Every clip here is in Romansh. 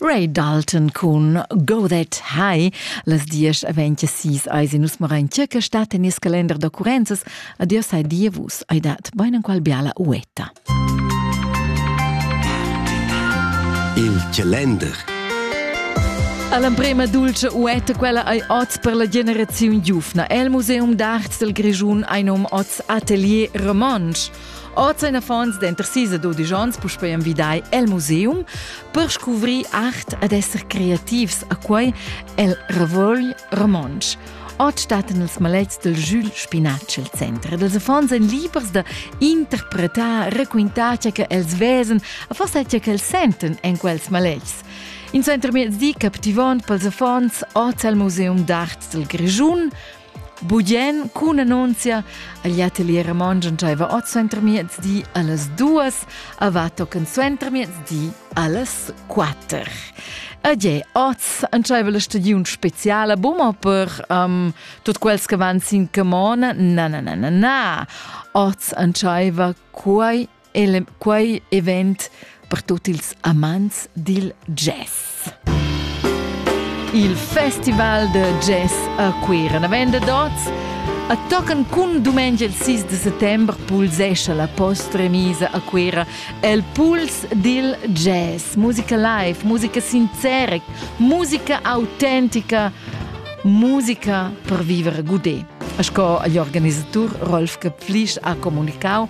Ray Dalton cun Go That High. Las diesch aventja sis eis in nus marain circa stat en nies calender da currenzas. Adios ai dievus, ai dat bein enqual biala uetta. Il calender. All'emprema dulce uetta quella ei oz per la generaziun giufna. El Museum d'Art del Grischun ein um oz atelier romansch. Oz ein affons denter sis e dudisch onns puspei envidai el museum per scuvrir art ed esser creativs a quei el Revuogl romontsch. Oz stattan els maletgs del Jules Spinatsch el center ed els affons ein libers da interpretar, requintar tge che els vesen, a forsa tge che els senten en quels maletgs. In suentermiezdi captivont pels affons oz al Museum d'Art del Grischun, Bugien cun annunzia agl atelier romontsch entscheiva oz suentermiezdi allas duas, a va tochen suentermiezdi allas quater. Ed je, oz entscheiva la stagiun speciala buma per um, tut quels che van sin camona, na, na, na, na, na. Oz entscheiva quei el quei event per tutti ils amants dil jazz. Il festival de jazz a Cuira navenda dots a tocan cun dumengia il 6 de settembre pulsescia la post-remisa a Cuira el puls dil jazz, musica live, musica sincera, musica autentica, musica per vivere gudé. Sco agli organisatur Rolf Köpflisch ha comunicau,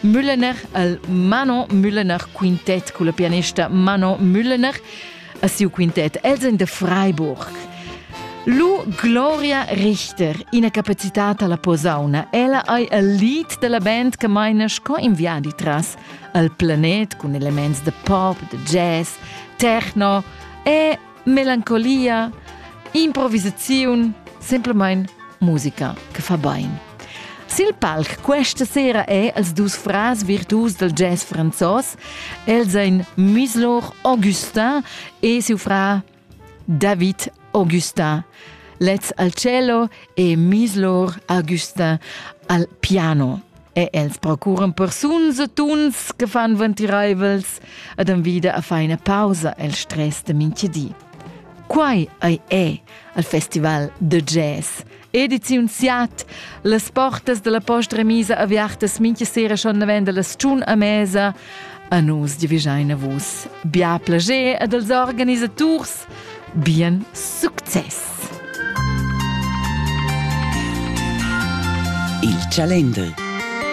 Müllener, il Mano Müllener quintet culla pianista Mano Müllener a siu quintet Els in de Freiburg. Lu Gloria Richter, ina capacitat alla posauna. Ella ei il lied della band che meina sco in viadi tras al planet cun elements de pop, de jazz, techno e melancolia, improvisaziun, semplamain musica che fa bain. Sil palc questa sera è els dus fras virtus del jazz franzos, el sein Muslor Augustin e siu fra David Augustin. Lez al cello e Muslor Augustin al piano. e els procuran persuns e tuns che fan ventiraivels ed envida a faina pausa el stress de mintgedi. Quai ei è al festival de jazz. Ediziun Siat, las portas della posta remisa aviartas mincha sera schon navenda las tschun a mesa. A nus divigeina vus. Bia plager ed als organisaturs Bien success! Il Chalender